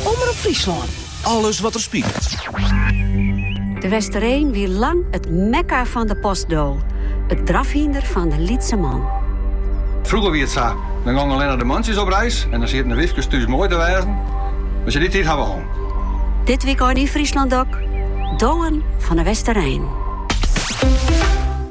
Omrop Fryslân. Alles wat er spilet. De Westereen wie lang it mekka fan de postdo, it drafhynder fan de lytse man. Frûger wie it sa, dan gongen allinne de mantsjes op reis en dan sieten de wyfkes thús moai te wêzen, mar sjoch, dy tiid ha we hân. Dit wykein yn Fryslân DOK, Dowen fan de Westereen.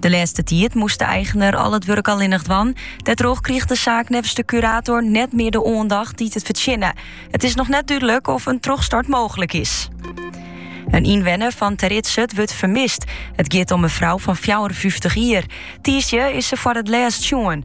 De lêste tiid moast de eigener al it wurk allinnich dwaan. Dêrtroch krige de saak neffens de curator net meer de oandacht dy't it fertsjinne. It is noch net dúdlik oft in trochstart mooglik is. In ynwenner fan Teridzert wurdt fermist. It giet om in frou fan 54 jier. Tiisdei is se foar it lêst sjoen.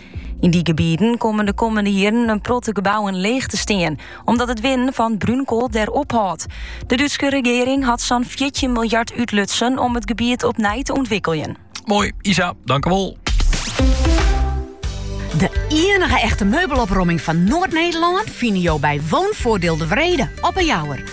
Yn dy gebieten komme de kommende jierren in protte gebouwen leech te stean, omdat it winnen fan brúnkoal dêr ophâldt. De Dútske regering hat sa'n fjirtjin miljard útlutsen om it gebiet opnij te ûntwikkeljen. Moai, Isa, dankewol. De ienige echte meubelopromming fan Noard-Nederlân fine jo by Woonvoordeel De Wrede, op 'e Jouwer.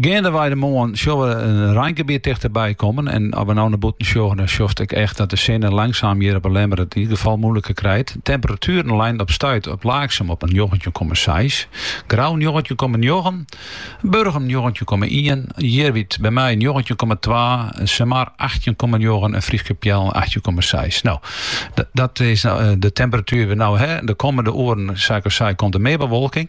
Geandewei de moarn sjoch we in reingebiet tichterby kommen en as we no nei bûten sjogge dan sjochst ek echt dat de sinne langsaam hjir op 'e Lemmer it yn ieder gefal moeiliker krijt. De temperatueren leinen op stuit op Laaksum op in njoggentjin komma seis, Grou njoggentjin komma njoggen, Burgum njoggentjin komma ien, Jierwyt by my njoggentjin komma twa, Sumar achttjin komma njoggen en Fryske Peallen achttjin komma seis. No, dat is de temperatuer we no ha. De kommende oeren, sa ik al sei, komt der mear bewolking.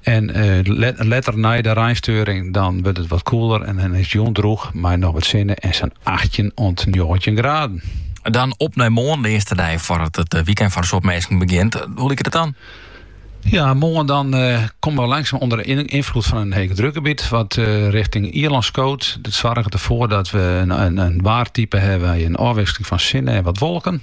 En eh, letter nei de reinsteuring dan wurdt it wat koeler en dan is it jûn droech mei noch wat sinne en sa'n achttjin oant njoggentjin graden. Dan op nei moarn, de earste dei foardat it eh, weekend foar in soad minsken begjint. Hoe liket it dan? Ja, moarn dan eh, komme we langsaam ûnder de ynfloed fan in hegedrukgebiet, wat eh, richting Ierlân skoot. Dat soarget derfoar dat we in, in, in waartype hawwe mei in ôfwikseling fan sinne en wat wolken.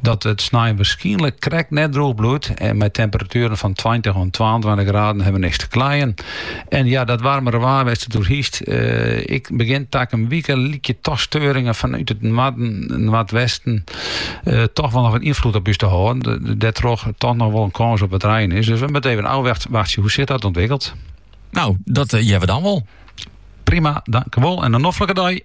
Dat it snein waarskynlik krekt net droech bliuwt en mei temperatueren fan tweintich oant twaentweintich graden ha we niks te kleien. En ja, dat waarmere waar wêrst it oer hiest. Eh, ek begjin takom wike lykje toch steuringen fanút it noarden, noardwesten eh, toch wol noch wat ynfloed op ús te hâlden. Dêrtroch toch noch wol in kâns op wat rein is. Dus we moatte even ôfwachtsje hoe sich dat ûntwikkelt. No, dat uh, we dan wol. Prima, dankewol en in noflike dei.